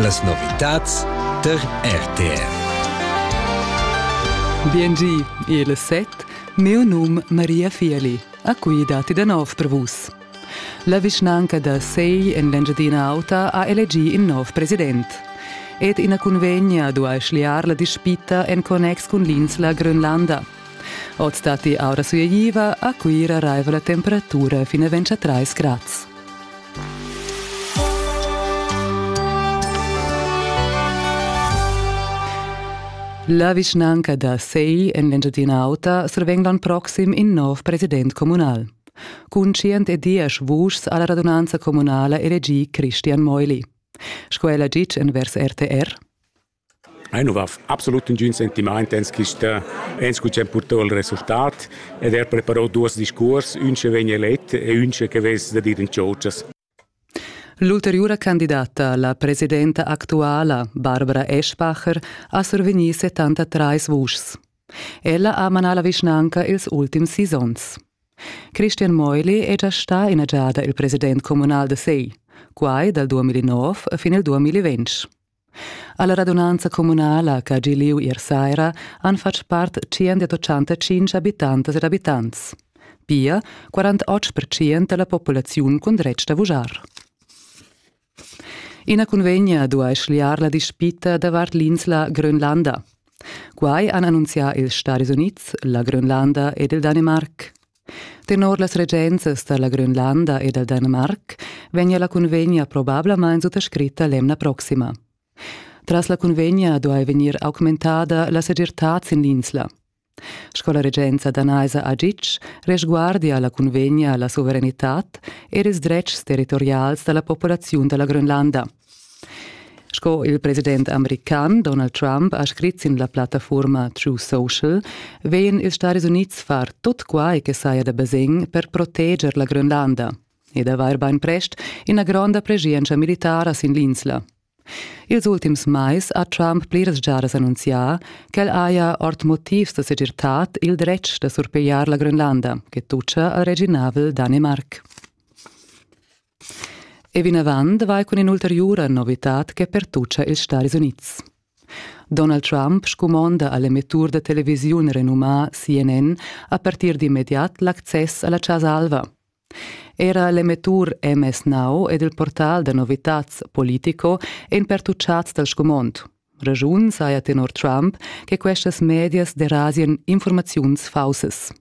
Las novitads tar RTR. Biengi, il set, mio num Maria Fieli, a cui dati da nov per vus. La vischnanca da Sei en l'Engiadina Auta ha elegì in nov president. Ed ina cunvegna duai schliar la dispita en connex cun l'insla Grönlanda. Oz datti aura sueiva, a Cuira raiva la temperatura fin a 23 grads. La vischnanca da Sei en l'Engiadina Auta survegn l'ann proxim in nov president communal. Cun tschient e diesch vuschs ha la radunanza communala elegì Christian Meuli. Sco ella ditg envers RTR. Ei nu va absolut nagün sentimaint ens quista ens cu ch'han purtau il resultat ed er preparau duos discuors, ün che vegn elet e ün che vess da dir in tschotschas. L'ulteriura candidata, la presidenta actuala, Barbara Eschbacher, ha survegni 73 vuschs. Ella ha manà la vischnanca ils ultims sis onns. Christian Meuli è già stà ina giada il president communal da Sei, quai dal 2009 fin il 2020. Alla radunanza communala che ha gi liu ier saira han fatg part 185 habitantas ed abitants. Pia 48% della populaziun cun dretg da vujar. Ina convegna duai schliar la dispita davart l'insla Grönlanda. Quai han annunzià ils Stadis Unids, la Grönlanda ed il Danimarc. Tenor las regenzas da la Grönlanda e dal Danemarc vegnia la cunvegna probablamain suttascritta l'emna proxima. Tras la cunvegna duai vegnir augmentada la segirtad sin l'insla. Sco la regenza danaisa ha ditg, resguardia la cunvegna la suveranitad ed ils dretgs territorials da la populaziun da la Grönlanda – Sco il president american Donald Trump ha scrit sin la plattafurma True Social, vegn ils Stadis Unids far tut quai che saja da basegn per proteger la Grönlanda ed avair bainprest ina gronda preschientscha militara sin l'insla. Ils ultims mais ha Trump pliras giadas annunzià ch'el haja ord motivs da segirtad il dretg da surpigliar la Grönlanda, che tutscha al reginavel Danimarc. E vinavant vai cun in'ulteriura novitad che pertuccia ils Stadis Unids. Donald Trump scumonda a l'emettur da televisiun renumà CNN a partir d'immediat l'access a la Chasa Alva. Era l'emettur MS Now ed il portal da novitads Politico èn pertuccads dal scumond. Raschun saja tenor Trump che questas medias derasien informaziuns faussas.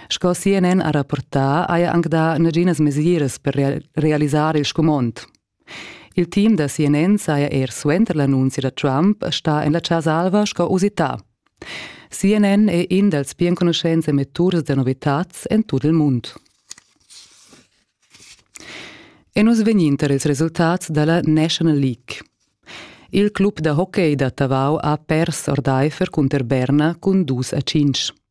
Sco CNN ha rapportà, haja anc dà naginas mesiras per realisar il scumond. Il team da CNN saja er suenter l'annunzia da Trump stà en la Chasa Alva sco usità. CNN è in dals pli enconuschents emetturs da novitads en tut il mund. E nus vegnin tar ils resultats da la National League. Il club da hockey da Tavau ha pers ordaifer cunter Berna cun dus a cinc.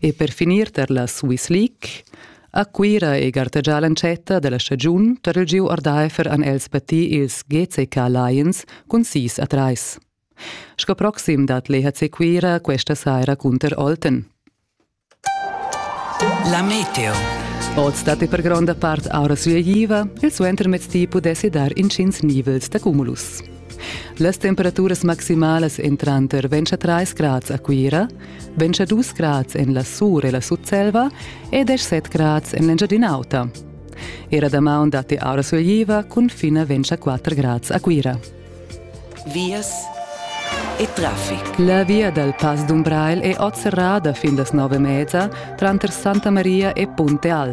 E per finir tar la Swiss League a Cuira è gartegià l'entschatta da la stagiun tar il giu ordaifer han els battì ils GCK Lions cun sis a trais. Sco proxim dat l'EHC Cuira questa saira cunter Olten. La meteo. Oz datti per gronda part aura sueigiva, il suentermezdi pudessi dar intgins nivels da cumulus. Las temperaturas maximalas èn tranter 23 grads a Cuira, 22 grads en la Sur e la Sutselva e 17 grads en l'Engiadin'Auta. Era damaun datti aura sulegliva cun fin a 24 grads a Cuira. Vias e traffic. La via dal Pass d'Umbrail è oz serrada fin las nove e mezza tranter Santa Maria e Punte Al.